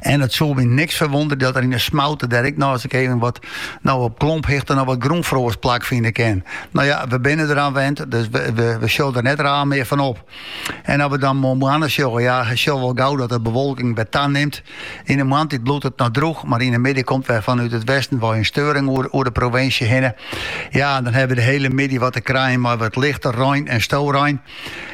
En it soe my niks ferwûndere dat der yn 'e smoute dêr, ik sis krekt wat, no op klomphichte noch wat grûnfroast plakfine kin. No ja, we binne deraan wend, dus we, we, we sjogge der net raar mear fan op. En as we dan moarntemoarn sjogge, ja, je sjogge wol gau dat de bewolking wer tanimt. Yn de moarntiid bliuwt it noch drûch, mar yn de middei komt wer fanút it westen wei in steuring oer, oer de provinsje hinne. Ja, dan hawwe we de hiele middei wat te krijen mei wat lichte rein en storein.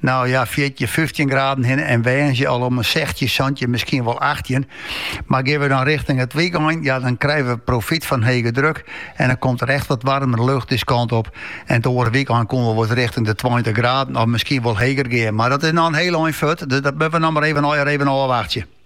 No ja, fjirtjin, fyftjin graden hinne en woansdei al om 'e sechstjin, santjin, miskien wol achttjin. Mar gean we dan richting it wykein, ja, dan krije we profyt fan hege druk en dan komt der echt wat waarmere lucht dizze kant op. En it oare wykein koene we wol richting de tweintich graden of miskien wol heger gean. Mar dat is noch in hiel ein fuort, dus dat moatte we noch mar even ôfwachtsje.